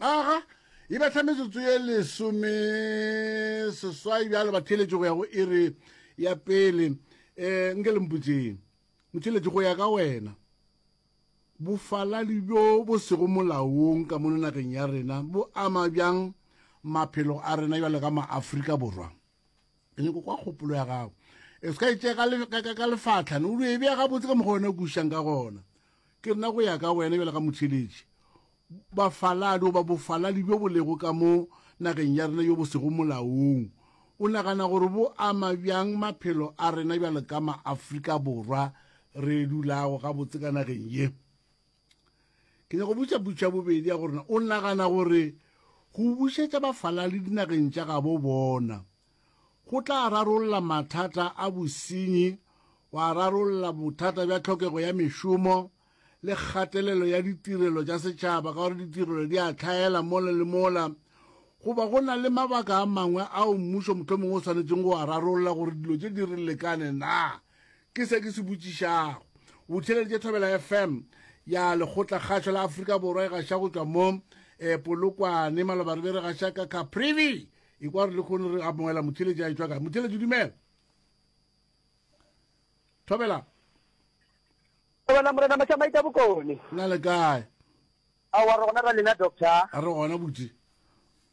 Aga, e betla metsotso ye lesome seswai bjalo ba theletše go ya go iri ya pele um nke le mputseng motheletše go ya ka wena bofaladi bjo bo sego molaong ka mono nageng ya rena bo ama bjang maphelo a rena bjalo ka maaforika borwa ke nyako kwa kgopolo ya gago e se ka e tšea ka lefatlha ne o e bea gabotse ka mokgwa wena o kušang ka gona ke nna go ya ka wena bjale ka motheletši bafaladi goba bofaladi bjo bo lego ka mo nageng ya rena yo bo sego molaong o nagana gore bo ama bjang maphelo a rena bjale ka maaforika borwa re dulago gabotse ka nageng ye Ke nyaka go botša potšo ya bobedi ya gore o nagana gore go bušetša bafalali dinageng tša gabo bona go tla rarolla mathata a bosenyi, wa rarolla bothata bja tlhokego ya mešomo le kgatelelo ya ditirelo tša setšhaba ka gore ditirelo di a tlhaela mola le mola goba go na le mabaka a mangwe ao mmušo mohlomongwe o swanetseng go a rarolla gore dilo tše di re lekane na Ke se ke se botšišago. O theeleditše Thobela FM ya Lekgotlakgašo la Afrika Borwa e gaša go tšwa mo e Polokwane. Maloba re be re gaša ka Caprivi. E kwa re le kgone re amoela motheeletši a etšwa kae. Motheeletši dumela. Thobela. Thobela Morena Mašamaita Bokone. Na le kae? Aowa re gona ra lena doctor. A re gona buti.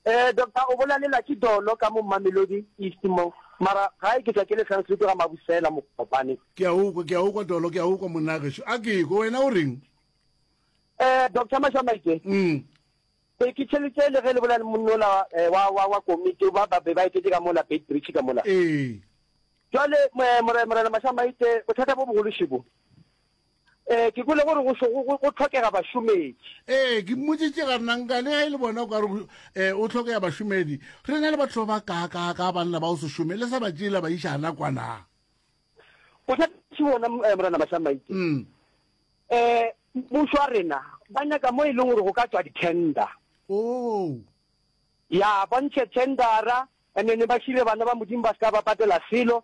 Eh doctor o bolalela ke dolo ka mo Mamelodi East mo mara gae ke tla ke le translate ga Mabusela Mokopane. Ke a ukwa ke a ukwa dolo ke a ukwa monna gešo a ke ko wena o reng? Eh doctor Mashamaite. Mm. Be ke tšhelitse le ge le bolela le monnola eh, wa wa wa komite ba ba be ba etetse ka mola Beit Bridge ka mola. Eh. Jwale mo- eh, more- morena Mashamaite bothata bo bogolo šebo. Ee, ke kwele gore go šo- go- go tlhokega bašomedi. ee ke mmotsitše ga nna nka le ge e le bona o ka re go- eh, o tlhokega bašomedi re na le batho ba ba kaakaa ka banna ba go se šome le sa ba tšeela ba iša ana kwana Bothati bona m- eh, Morena Mashamaite. Mm. Eh, mmušo wa rena ba nyaka mo e leng gore go ka tswa di-tender. oo ya ba ntshe tendera and then ba šire bana ba modimo ba se ka ba patela selo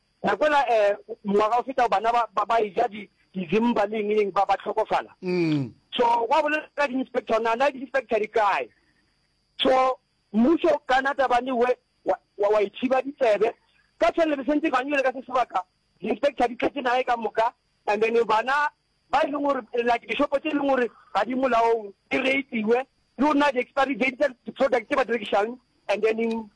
Ra kwela ngwaga o fetago bana ba e ja dizimba le eng le eng, ba hlokofala. So gwa bolela ka di-inspector, gore na na di-inspector di kae. So mmušo ka na tabang e we, wa e thiba ditsebe. Ka tšhelele besentse ba nyole ka se sebaka, di-inspector di tletše naga e ka moka, and then bana ba e leng gore like dishopo tse e leng gore ga di molaong di reitiwe le go nna di-expiry date tsa di-product tse ba di rekišang and then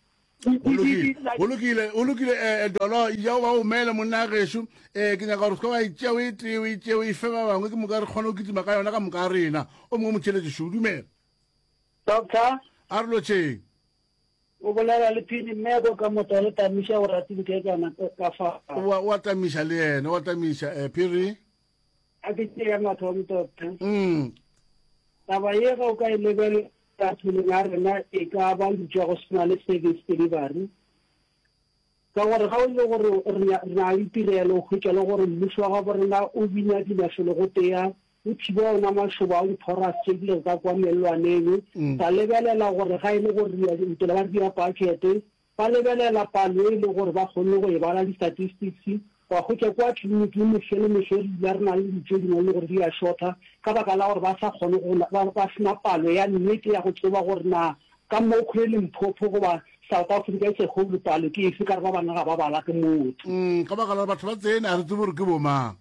go lokile o lokile eh, eh, dolo ja o ba o mele monna gešu um eh, ke nyaka gore se ka wa itseo e tee o itseo e fe ba bangwe ke moka re kgone go kitima ka yona ka moka rena o mongwe motšheletšešo o dumela doctor a re lotšheng O bolela le phini mmeko ka motla le tamiša o ratile ke ka na ka fa. Wa wa tamiša le yena wa tamiša eh phiri. A ke ke ya matho mtotha. Mm. Taba ye ga o ka e lebele ka thuleng a rena e ka ba lutšwa go sena le service delivery. Ka gore ga e le gore re a, re a itirela, o hwetša le gore mmušo wa gabo rena o bina dinašologotea, o thiba ona mašoba ao diphoras tše di lego ka kua mellwaneng, ba lebelela gore ga e le gore re a ntele ba re dia budget, ba lebelela palo e le gore ba kgonne go e bala, di-statistics, Wa hwetša kwa tliliniking mehla le mehla re dula re na le dilo tše dingwe e le gore di a šotha ka baka la gore ba sa kgone go, ba, ba se na palo ya nnete ya go tseba gore na ka Mokhwe le Limpopo goba South Africa as a whole palo ke efe ka re ba bangwe ga ba bala ke motse. Umm, ka baka la gore batho ba tsene a re tsebe gore ke bomang.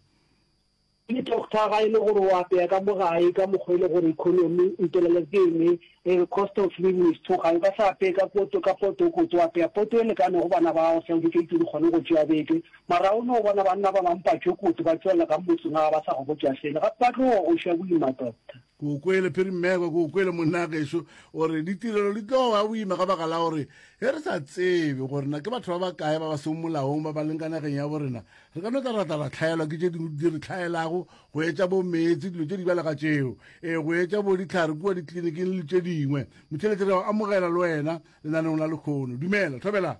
Ke doctor ga e le gore o apeya ka mo gae ka mokgwa e le gore economy o itelela ke ene e re cost of living is too high o ka se apeye ka poto ka poto o ko tso apeya poto e lekanego bana ba gago sa educated o kgone go tšeya beke mara o no bona banna ba bang patšo koto ba tšwelela ka motseng ga ba sa go botša selo gape ba tlo go šwa boima doctor. Ke o kwele Phiri Mmekwa, ke o kwele monna gešo, o re ditirelo di tlo wa boima ka baka la gore ge re sa tsebe gore na ke batho ba bakae ba ba seng molaong ba ba leng ka nageng ya borena Re ka no tla ra tla ra hlaelwa ke tše dingwe di re hlaelago, go etša bo meetse, dilo tše di balega tšeo, ee, go etša bo dihlare kua ditliliniking le tše dingwe. Motheletše, re a o amogela le wena lenaneong la lekgono. Dumela, thobela.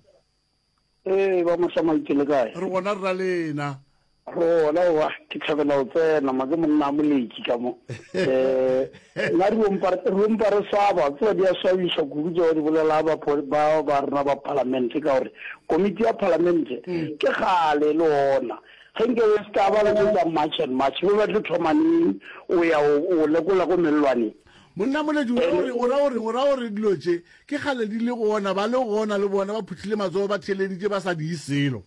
Ee, ba Mohlamaitse, le kae? Re gona, re na le ena. Re gona, owa, ke thabela go tsena, ma ke monna a moletši ka mo. Ee. Nna di ompa, re ompa re swaba, tseba di a swabiša kudu tšeo di bolela ba ba ba rena ba palamente ka gore komiti ya palamente ke kgale le ona ge nke o ska ba le tso tsa march and march be ba tlo thoma neng o ya o o lekola ko mellwaneng. Monna Moledi o ra o reng, o ra o reng, o ra o re dilo tše ke kgale di le gona, ba le gona le bona ba phuthile matsogo ba theeleditše ba sa diye selo.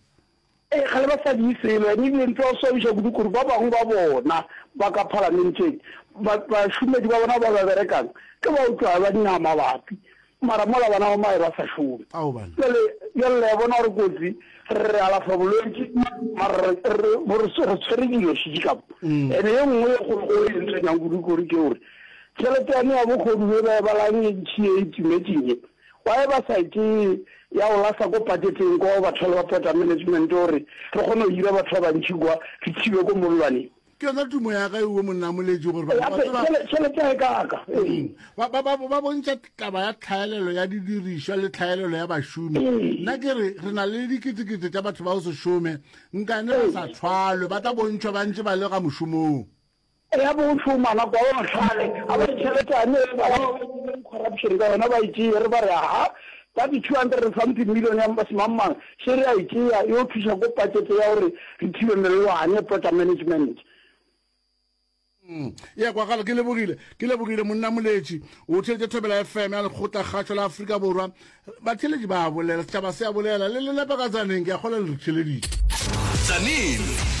Ee, kgale ba sa di selo, and ebile ntlo ya swabiša kudu kore ba bangwe ba bona ba ka phalamenteng, ba, bašomedi ba bona ba ba berekang ke ba o tlwa ba nyaga mabapi, mara mola bana ba mae ba sa šome. Aoban. Bjale, bjale le a bona gore kotsi, re, re alafa bolwetši, mara re, re, bo re, re tshwere dilo šitši ka mo. And ye nngwe ye kgolokgolo e ntshwenyang kudu kore ke gore tšhelete yane ya bogodu ye ba e balang ye ntšhi ye e timetšeng ye, Webesaete ya Ulasa ko paketeng kwa go batho ba Pota Management o re, Re kgone go hira batho ba bantši kwa, re thibe ko mollwaneng. Ke yona tumo ya ka ewe monnamoletši gore batho ba tseba Tšhelete ya ekaka. ba, ba, ba, ba bontšha taba ya tlhaelelo ya didirišwa le tlhaelelo ya bašomi. Nna ke re, re na le diketekete tša batho ba go se šome, nkane ba sa thwalwe, ba tla bontšhwa ba ntše ba le ka mošomong. Ya bo o tšhuma nako ya bo mahlale a ba ditšheletane e ba ba dirileng corruption ka yona ba e tšee re ba re aha ka di two hundred and something million ya mba semang mang še re a e tšea e o thuša ko pakete ya gore re thibe mellwane pota management. Eya kwagalo ke lebogile ke lebogile monna moletši o theletše thobela fm ya lekgotla kgatšho la afrika borwa batheletši ba a bolela setšhaba se a bolela le le nepa ka tsaneng ke a kgola le re theleditše tsaneng